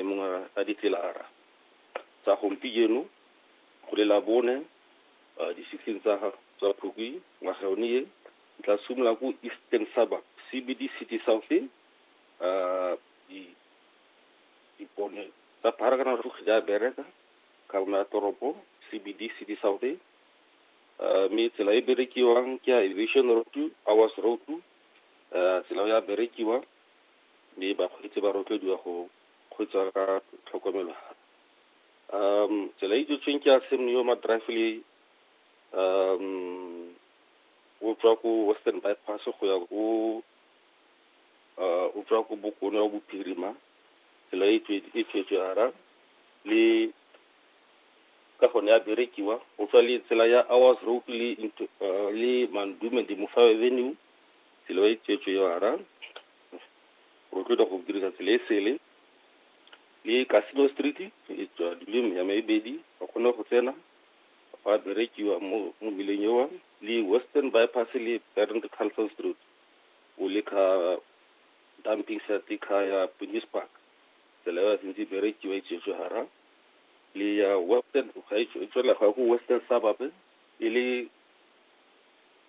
e mongwe a ditlelara tsa gompijeno go le labone difitlhing tsa tsa phukwi ngwaga yone e tla simolola ko eastern suburb cbd city south di dipone tsa pharakana go kgija a bereka ka bona toropo cbd city south mme tsela e berekiwang ke ya aviation road hours road tsela ya berekiwa mme bakgweetsi ba rotloediwa go kgweetsa ka tlhokomelo gape um tsela e dutsweng ke ya Sam Neo Madrafile um o tswa ko western bypass go ya ko o tswa ko bokone wa bophirima tsela e tswetswe ara le ka gone ya berekiwa o tswa le tsela ya hours road le le mandume di mofa avenue tsela e tswetswe yona rotloetsa go dirisa tsela e sele le casino street e tswa dule ya mebedi ba kgone go tsena ba berekiwa mo mo mmileng ewa le western bypass le bernd carlson street o le ka dumping site ka ya police park tsela ya sentse berekiwa e tswetswe hara le ya western ga e tswela ga go western suburb e le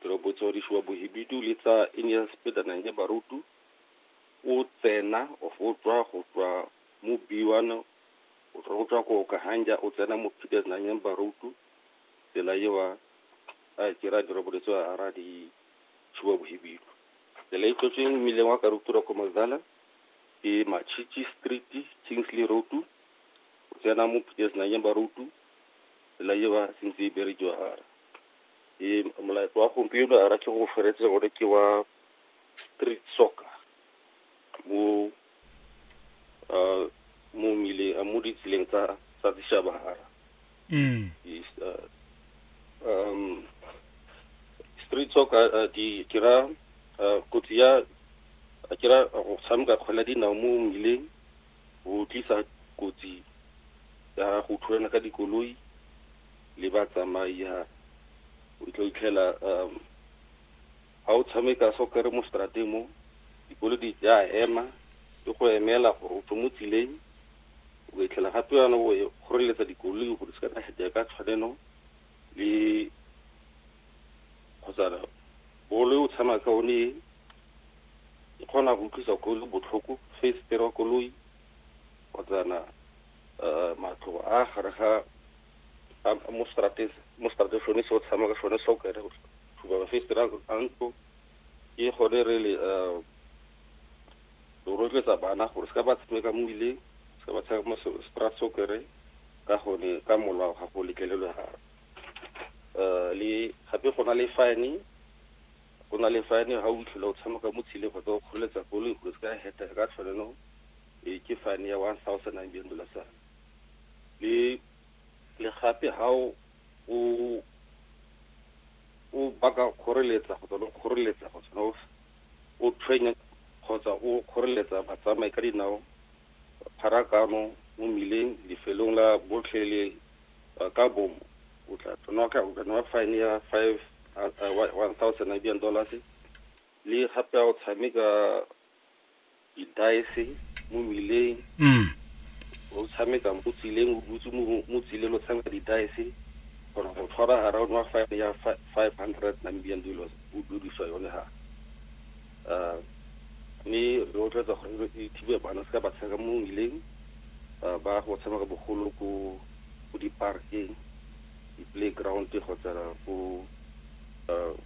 Teropotswadiši wa Bohibidu le tsa Inyaspedana ya Barutu o tsena of o tswa go tswa mo B1 o tswa go tswa go Okahanja o tsena mo Peters nang ya Barutu tsela ewa a kira diroboletso a ara di tshiwa Bohibidu tsela e tlotsweng mmileng wa Karutura ko Mazala ke Machichi Street Kingsley Road o tsena mo Peters nang ya Barutu tsela ewa sentse e berekiwa ara Ee, molaetsa wa gompieno a ke go feretse gore ke wa street soccer mo uh, mo mmileng mo ditseleng tsa tsa dishabara mm. uh, um street soccer uh, di kira uh, kotsi ya a kira go tshameka kgwele dinao mo mmileng go tlisa kotsi ya go thulana ka dikoloi le ba tsamai ha o tlo itlhela um ha o tshameka soccer mo strateng mo dikolodi di a ema di go emela gore o tswe mo tseleng o itlhela gape yana o e kgoreletsa dikoloi gore se ka di ka tshwanelo le kgotsa bolo e o tshama ka one e kgona go utlwisa koloi botlhoko face wa koloi kgotsana eh, matlo a gare ga mo strateng mo strateng sone se o tshama ka sone se o kere thuba mafestere a ntlo ke gone re le eh, re rotloetsa bana gore se ka ba tshameka mo ileng se ka ba tshameka mo strat se o kere ka gone ka molao ga go letlelelwe ga eh, le gape go na le fine go na le fine ga o itlhela o tshameka mo tshileng kgotsa o kgoreletsa koloi gore se ka heta ka tshwanelo e ke fane ya 1000 rand bjeng bola sa le le gape ha o o o baka kgoreletsa go tswa kgoreletsa go tswa o tshwenya kgotsa o kgoreletsa batsamai ka dinao pharakano mo mmileng lefelong la botlhe le ka bomo o tla tsena ka o kana fine ya 5 1000 Namibian dollars le gape o tshameka didaese mo mmileng mm. o tshameka mo tsileng o dutse mo tsileng o tshameka didaese gore go tshwara ga raone wa five ya five hundred namibian dollars o dudiswa yone ga um mme re otletsa gore e thibe bana se ka ba tshameka mo mmileng um ba go tshameka bogolo ko ko di-parkeng di-playground kgotsa ko um